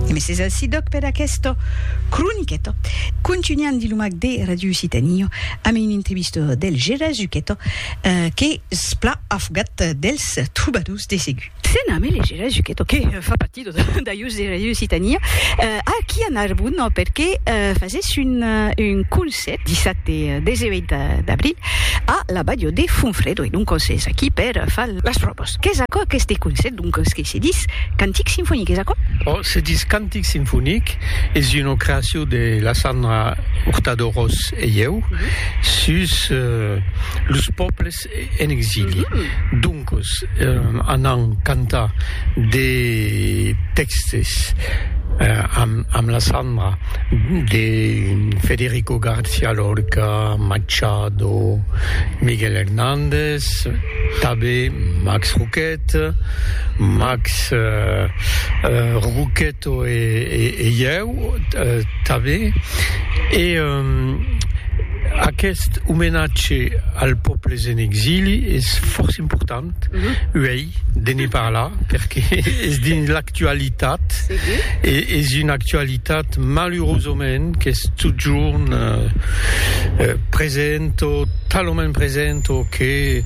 E mes es ací dòc per aquesta croniqueta. Contunhan dins lo mac de Ràdio Occitània amb una entrevista del Gera Zucheta qu'es plan afogat dels trobadors de segur. Se name le Gera Zucheta que fa partida d'ajus de Ràdio Occitània aquí a Narbon perque fasèsse un concèrt dissabte 18 d'abril a la Bàdio de Fonfrèdo e doncas es aquí per far las pròvas. Qu'es aquò aqueste concèrt? Doncas que se dis cantic sinfonic, es aquò? Ò, se dis cantic sinfonic, es una creacion de la Sandra Hurtado Ros e ieu sus los pòbles en exili. Doncas, anam cantar de tèxtes amb la Sandra de Federico García Lorca, Machado, Miguel Hernández, tanben Max Roquet. Eth Max Roqueto e ieu tanben, e aqueth omenatge als pòbles en exili es fòrça important uei de ne parlar, perque es dins l'actualitat, e es una actualitat malurosament qu'es totjorn present o talament present o que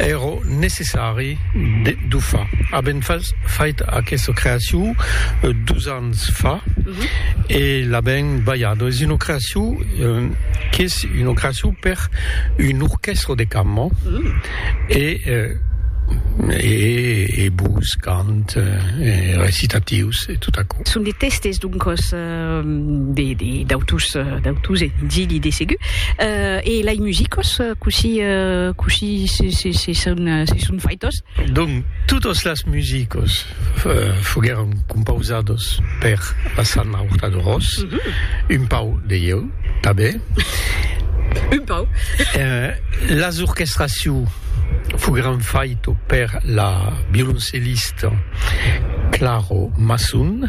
èra necessari. Sari de Dufa. Avèm fait aquesta creacion dus ans fa e l'avèm balhada. Es una creacion qu'es una creacion per un orquèstra de cambra e e bus, cant, recitatius e tot aquò. Son de tèstes, doncas. de d'autus d'autus e d'illi de segur euh, e lai musicos cossí cossí se se se son se son faitos? Donc totos las musicos foguèron compausados per la Sanna Hurtado-Ros, un pau de ieu tanben, un pau, las orchestraciu foguèron faito per la violoncellista, Claro Masson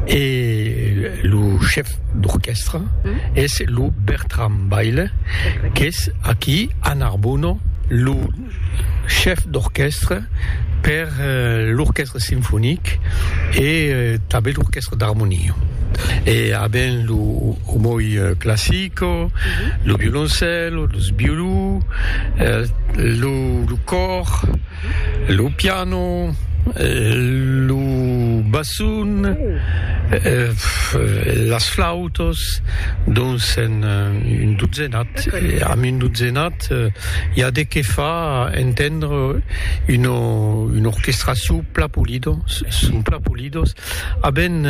e lo chef d'orquèstra es lo Bertram Baile qu'es aquí a Narbona lo chef d'orquèstra per l'orquèstra sinfonic e tanben l'orquèstra d'armonia e a ben lo omoi classico, lo violoncèlo, los violons, lo còr. Lo piano, lo basson, las flautas, dons en un dotzenat, amb un dotzenat i a de qué fa entendre una orquestra sous plat polida, sous plat polida. Avèm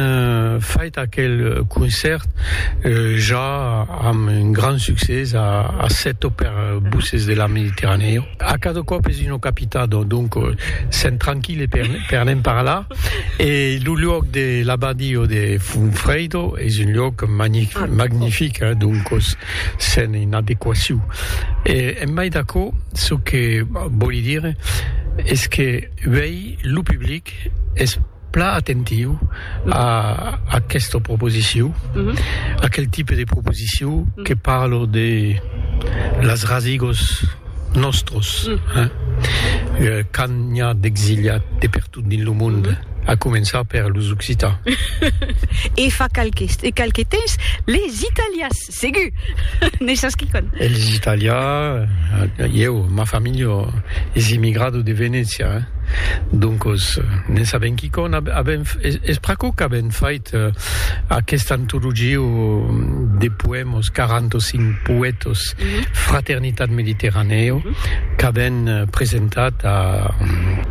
fait aquel concèrt ja amb un grand succès a Assetto per Buses de la Mediterranèo. A cada còp es una capitat, donc sèm tranquil e per ne'n parlar. E lo luòc de l'abadio de Funfredo es un luòc magnific, donc sèm en adequacion. E en mai d'aquò, çò que vòli dire es que uèi lo public es. Plan atentiu a aquesta proposiciu, aquel tipe de proposiciu que parlo de las rasigos nòstros, quand n'i a d'exiliat de pertot dins lo monde, a començar per los occitans. E fa qualques temps, les italians. Segur! N'es sas quicòm. Elis italian, ieu, ma familha es immigrada de Venècia, doncos n'en sabem quicòm. Avem, es pr'aquò qu'avem fait aquesta antologia de poèmas, 45 poètas, Fraternitat Mediterranèa, qu'avem presentat a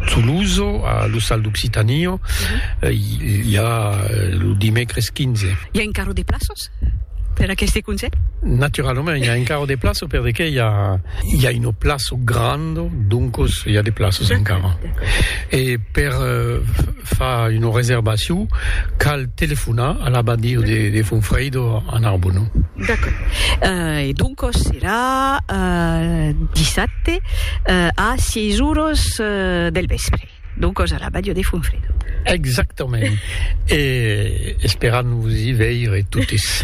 Toulouse, a l'Ostal d'Occitània, ja lo dimècres 15. I a encara de plaças? Per aqueste conselh? Naturalament, i a encara de plaço per de qué i a i a una plaço granda, doncos i a de plaços encara. E per far una reservacion cal telefonar a l'abadia de de Fonfrèido a Narbona. D'accord. E doncos serà dissabte a sièis oras del vèspre. Donc a la Badia de Fonfredo. Exactament. e esperam vos i veire totes.